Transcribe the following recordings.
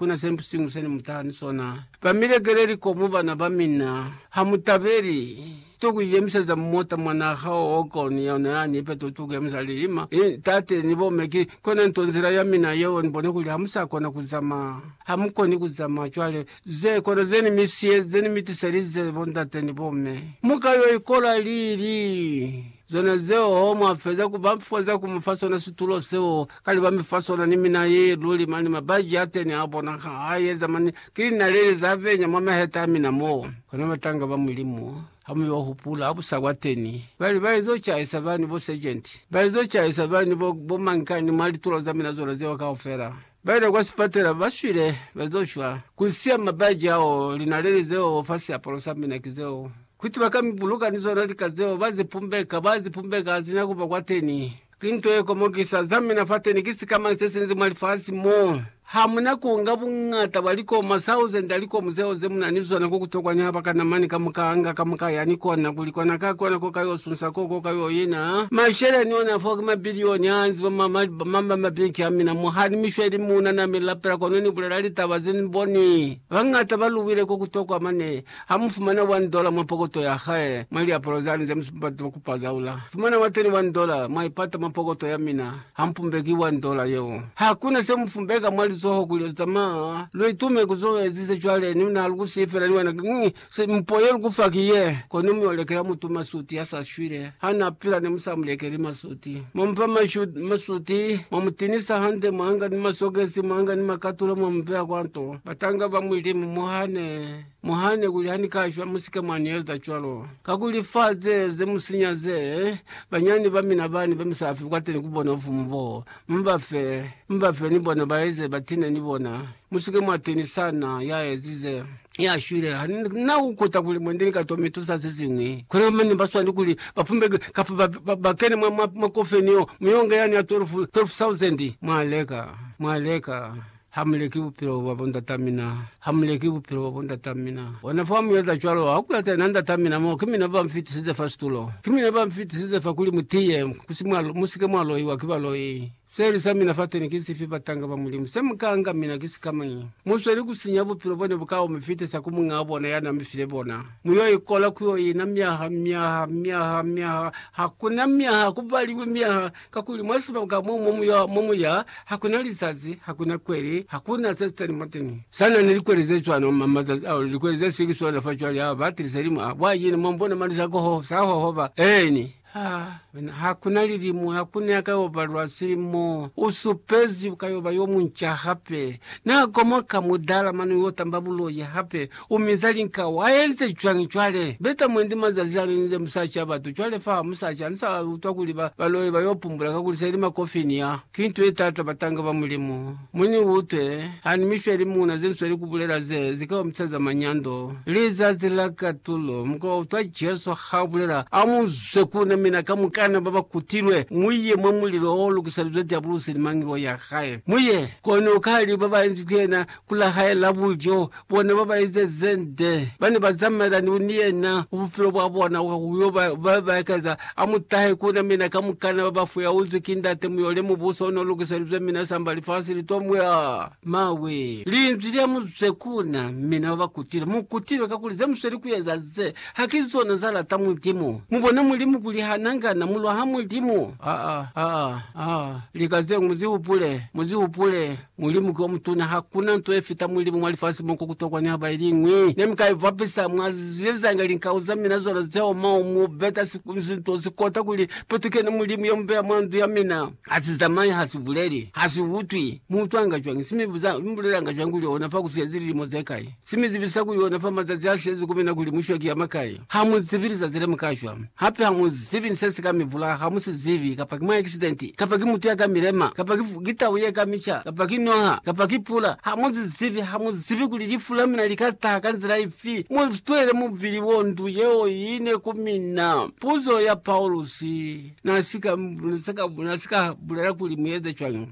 Kuna sempi siñwi sene mutaha ni sona. Bamilekele likomo bana bamina. Hamutabeli to kuiyemiseza mota mwa naha oko ni yona yani, ipe to kuyemisa lilima ni tate ni bomme. Ki kona nto nzila yamina yeo nibone kuli hamusa kona kuzama. Hamukoni kuzama cwale. Ze kona zeni mi siyeze ni mitiselize bondate ni bomme. Muka yo ikola lili? Zona zeo mwafeza kuba foza kumufa sona situlo seo Kale ba mi fa sona ni mina ye luli mani mabaji a teni a bona ha a yeza mani ki linaleli za venya mwa maheta a mina mo. Kona batanga ba Mulimu ha mu yo hupula busa kwa teni bali ba ezo caisa bani bo sergenti, ba ezo caisa bani bo bo mankani mwa litulo za mina zona zeo kaufela. Ba ila kwa sipatela ba shwile ba zo shwa ku siya mabaji ao, linaleli zeo fa siapalo sa mina ki zeo kuti ba ka mi buluka ni zona lika zeo ba zi pumbeka, ba zi pumbeka ha zina kuba kwa teni. Ki nto ye komokisa. Za mina fateni ki sikamani se sinzi mwa lifasi mo. Ha mu na ku nga buñata bwa likomu, masauzende a likomu zeo ze mu na ni zona, ko ku tokwa niha ba ka na mani kamukaanga kamuka yani kona kuli kona ka kona ko ka yo sunsa koo, ko ka yo ina masheleni ona foo. Ki mabilioni a nzi mwa mabinki a mina mo. Ha ni mi shweli muuna na mi lapela, kono ni bulela litaba ze ni boni bañata ba luwile ko ku tokwa mane. Ha mu fumana one dollar mwa pokoto ya hae, mwa liapalo zani ze mu sipata ku pazaula, fumana wa teni one dollar, mwa ipata mwa pokoto ya mina, ha mu pumbeki one dollar yeo. Ha ku na se mu pumbeka mwa lizoho kuli lu zamaya, lu itume ku zo ezize cwale, ni na lu ku si fela ni wena ki ñ, se mpo ye lu ku fa ki ye, kono mu yo lekela mutu masuti ya sa shwile. Ha na pila ne mu sa mu lekeli masuti. Mwa mu fa masuti, mwa mu tinisa hande, mwa nga ni masokesi, mwa nga ni makatula mwa mu beya kwa nto. Batanga ba Mulimu mo hane. Muhane kuli ha ni ka shwa musike mwa ni eza cwalo. Kakuli fa ze, ze mu sinya ze, banyani ba mina bani ba mi sa fi kwateni ku bona bufumu bo, mu ba fe. Mu ba fe ni bona ba eze ba tine ni bona. Musike mwa teni sana, ya ezize. Ya shwile. Ha ni na ku kuta kuli mwendi ni ka to mi tusa ze ziñwi. Kono mane ba swani kuli ba pumbe kapa ba, ba, ba kene mwa, mwa, mwa kofeni yo, mu yo nga yani ya 12, 12,000. Mwa leka. Mwa leka. Ha mu leki bupilo bwa bo ndata mina, ha mu leki bupilo bwa bo ndata mina. Ona fa mu eza cwalo, ha ku kulata yena ndata mina, mo ki mina ba mfitisize fa situlo, ki mina ba mfitisize fa kuli mu tiye, mu si ke mwa loiwa ki baloi. Seeli sa mina fateni ki sifi, batanga ba Mulimu? Se mu ka nga mina ki sikamañi? Mu sweli ku sinya bupilo bo ne bu ka mu fitisa ku Muñaa bona ya na mi file bona. Mu yo ikola ku yo ina myaha, myaha, myaha, myaha. Ha ku na myaha, ha ku baliwi myaha. Kakuli mwa sibaka mo mu muya, hakuna lizazi, hakuna kweli, hakuna se sitani mwateñi. Sana ni likweli ze cwano ma mazazi ao, likweli ze si ki swana fa cwale, ha ba tili selimu a bwa yini, mwa bona mali sa koho, sa hohoba. Eeni. Ha, mina, hakuna lilimu, hakuna ya ka yo ba lwa silimu. U supezi u ka yo ba yo munca hape. Na komoka mudala mane u yo tamba buloi hape. U minza linka. Wa yelize cwañi cwale? Beta mwendi mazazi a linile musa ca batu. Cwale fa, musa ca, ni sa utwa kuli ba, ba loye ba yo pumbula, kakuli se li makofini ya. Ki nto ye taata batanga ba Mulimu. Mu ni utwe, ha ni misho ya limuna ze ni sweli ku bulela ze, ze ka ba misa za manyando. Lizazi la katulo. Mu ka utwa Jesu ha bulela, A mu zwe ku na, mina kamukana ba ba kutilwe, mu ye mwa mulilo o lukisalizwe Diabulosi ni mangelo ya hae. Mu ye, kono ka li ba ba enzi ku yena, ku la hae la bulyo, Bona ba ba eza ze nde ba ne ba zamaelani ni yena ku bupilo bwa bona, kwa ku yo ba ba ba ekeza. A mu tahe ku na, mina kamukana ba ba fuyauzwi ki Ndate, mu yo le Mubuso o n'o lukiselizwe mina, samba lifasi li t'o mu ya mawe. Linzwi lya mu zwe ku na, mina ba ba kutile. Mu kutile kakuli ze mu sweli ku eza ze, ha ki zona za lata Mulimu. Mu bona Mulimu kuli ha na nga na mu lwaha Mulimu? Aa, aa, aa, lika ze ñwi mu zi hupule, mu zi hupule. Mulimu ki omutuna. Hakuna nto yefita Mulimu mwa lifasi mo, kwa kutokwa niha ba iliñwi ne mi ka ibapisa. Mwa ziezanga linkau za mina zona zeo, mo mu beta sinto sikota kuli petukeni Mulimu yo mubeya mwa ndu ya mina. Ha si zamai, ha si buleli, ha si utwi. Mu utwanga cwañi? Si mi buza, Mi bulelanga cwañi kuli ona fa ku siezi lilimo ze kai? Si mi zibisa ku yona fa mazazi a shezi ku mina kuli mu shwa ki ya makai. Ha mu zibi lizazi le mu ka shwa. Hape ha mu zibi ni se si ka mi bulaya, ha mu si zibi, kapa ki mwa akisidenti, kapa ki mutu ya ka mi lema, kapa ki, ki tau ye ka mi ca, kapa ki noha, kapa ki pula. Ha mu si zibi, ha mu zibi kuli lifu la mina li ka taha ka nzila ifi. Mu twele mubili wo ndu yeo i ne ku mina. Puzo ya Paulusi na si ka, na si ka bulela kuli mu eze cwañi.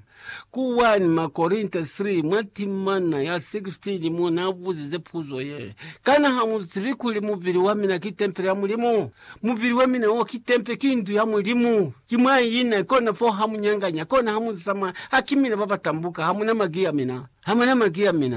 Ku 1 Makorinta 3, mwa timana ya 16 mo n'a buzize puzo ye, Kana ha mu zibi kuli mubili wa mina ki tempele ya Mulimu? Mubili wa mina wo ki tempele, ki ndu ya Mulimu. Ki mwa i na, kona fo ha mu nyanganya, kona ha mu zama. Ha ki mina ba ba tambuka, ha mu na maki a mina. Ha mu na maki a mina.